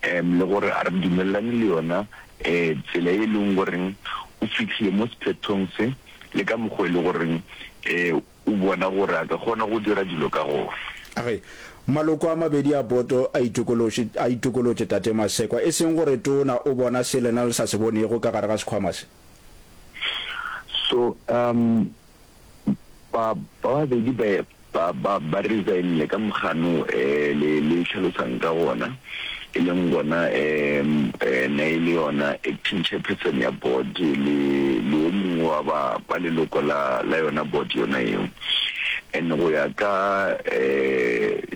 um le gore a re dumelelane le yona um tsela e leng goreng o fitlhile mo sephethong se le ka mokgwa e le goreng um o bona gore a ka kgona go dira dilo ka gona. Age, Maloko a mabedi a boto a itokolotše, a itokolotše Tate Masekwa, e seng gore Tona o bona se lena le sa se bonego ka gare ga sekhwama se. So, um Ba babedi ba ba ba ba resignile ka mogano um le le tlhalosang ka gona, e leng gona um ena e le yona acting chairperson ya board le le o mongwe wa ba ba leloko la la yona board yona eo. And go ya ka um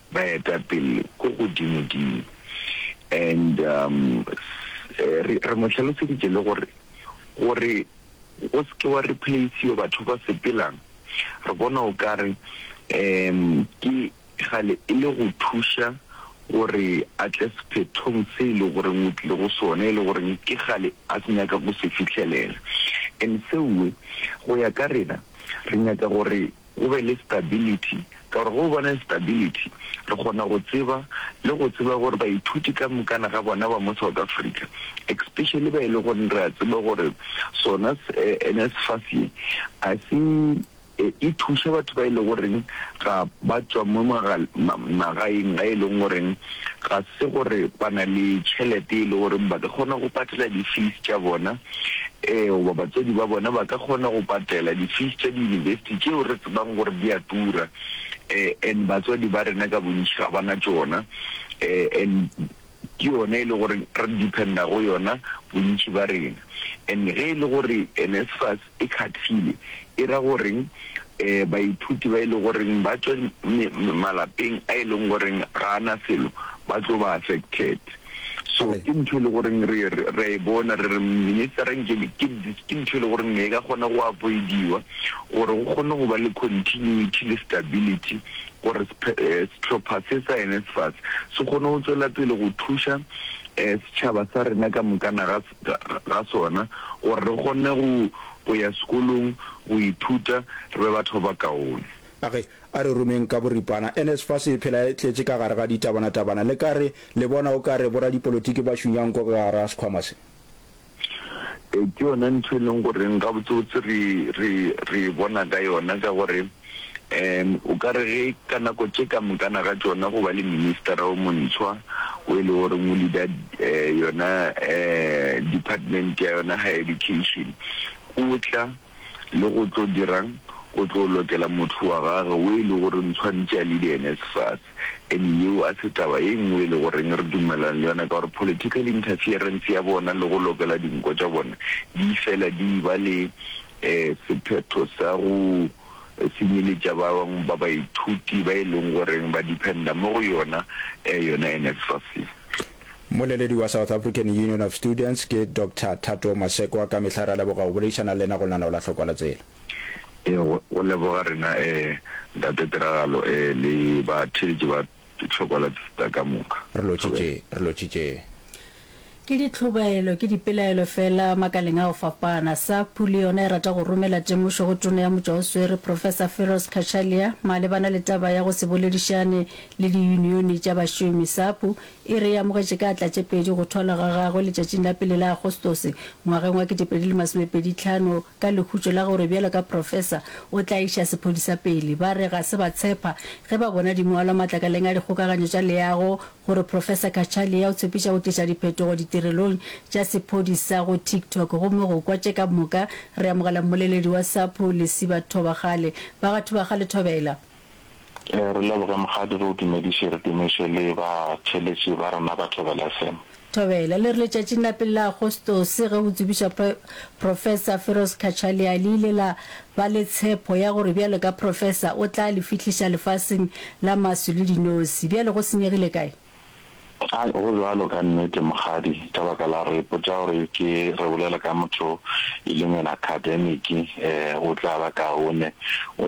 baetapele ko godimodimo and um re re mo tlhaloseditše le gore gore go se ke wa replace-iwa batho ba sepelang re bona o kare um ke gale e le go thuša gore a tle sephethong se e le goreng o tlile go sone e le goreng ke gale a se nyaka go se fitlhelela and seoe go ya ka rena re nyaka gore go be le stability, ka gore ge o bona stability re kgona go tseba le go tseba gore baithuti ka mokana ga bona ba mo South Africa, especially ba e le goreng re a tseba gore sona NSFAS ye a se e thuša batho ba e le goreng ga ba tšwa mo magaeng ga e leng gore ga se gore ba na le tšhelete e le goreng ba ka kgona go patela di-fees tša bona. Ee, goba batswadi ba bona ba ka kgona go patela di-fees tša di-university tšeo re tsebang gore di a tura, um and batswadi ba rena ka bontši ga ba na tšona, um and ke yona e le gore re dependa go yona bontši ba rena. And ge e le gore NSFAS e khathile, e ra goreng um baithuti ba e le goreng ba tšwa malapeng a e leng goreng ga a na selo ba tlo ba affected? So ke ntho e le goreng re re e bona re re ministera nke ke ke ntho e le goreng ne e ka kgona go avoidiwa gore go kgone go ba le continuity le stability gore eh, setlhopha se sa NSFAS se kgone go tswela pele go thuša eh, setšhaba sa rena ka mokana ga ga sona gore re kgone go go ya sekolong go ithuta re be batho ba kaone. Age, a re romeng ka boripana. NSFAS e phela e tletše ka gare ga ditabanatabana. Le ka re, le bona o ka re boradipolotiki ba šunya nko ka gare ga sekhwama se. Ee, ke yona ntho e leng goreng gabotsebotse re, re, re e bona ka yona, ka gore um o ka re ge ka nako tše ka mokana ga tšona go ba le ministera o montshwa o e le goreng o leader um yona um department ya yona higher education, o tla. le go tlo dira'ng? O tlo lokela motho wa gage wo e le goreng tshwanetše a lide ene sefase. Ene yeo a se taba ye nngwe e le goreng re dumelelana le yona, ka gore political interference ya bona le go lokela dinko tša bona di fela di e-ba le sephetho sa go senyeletša ba bangwe ba baithuti ba e leng goreng ba dependa mo go yona, yona NSFAS. Mmoleledi wa South African Union of Students ke Doctor Thato Masekwa. Ka mehla re a leboga go boledišana le lena go lana o la hlokwa la tsela. Ee, go, go leboga rena eh, Ntate Tiragalo eh, le ba theetši ba hlokwa la tsela ka moka. Re lotšitše, re lotšitše. Ke ditlhobaelo, ke dipelaelo fela makaleng a go fapana. SAPU le yona e rata go romela temošo go Tona ya Motšwaoswere, Professor Firoz Cachalia, malebana le taba ya go se boledišane le diyunione tša bašomi. SAPU E re e amogetše ka tlatšepedi go thwalwa ga gagwe letšatšing la pele la Agostose, ngwageng wa ketepedi le masomepedi tlhano, ka lehutšo la gore bjalo ka profesa o tla iša sephodisa pele. Ba re ga se ba tshepa ge ba bona di ngwalwa matlakaleng a dikgokaganyo tša leago gore Profesa Cachalia o tshepiša go tliša diphetogo ditirelong tša sephodisa go TikTok. Gomme go kwa tše ka moka, re amogela mmoleledi wa SAPO, Lesiba Thobagale. Ba ga Thobagale, thobela. Re leboge Mokgadi re o dumediše re dumiše le ba theletši ba rena ba Thobela FM. Thobela, le re letšatšing la pele la Agostose ge go tsebišwa Professor Firoz Cachalia le ile la ba le tshepho ya gore bjalo ka Professor o tla le fihliša lefaseng la maswi le dinosi. Bjale go senyegile kae? Ai, go bjalo ka nnete Mokgadi ka baka la gore ipotša gore ke re bolela ka motho e leng ena Academic, o tla ba kaone.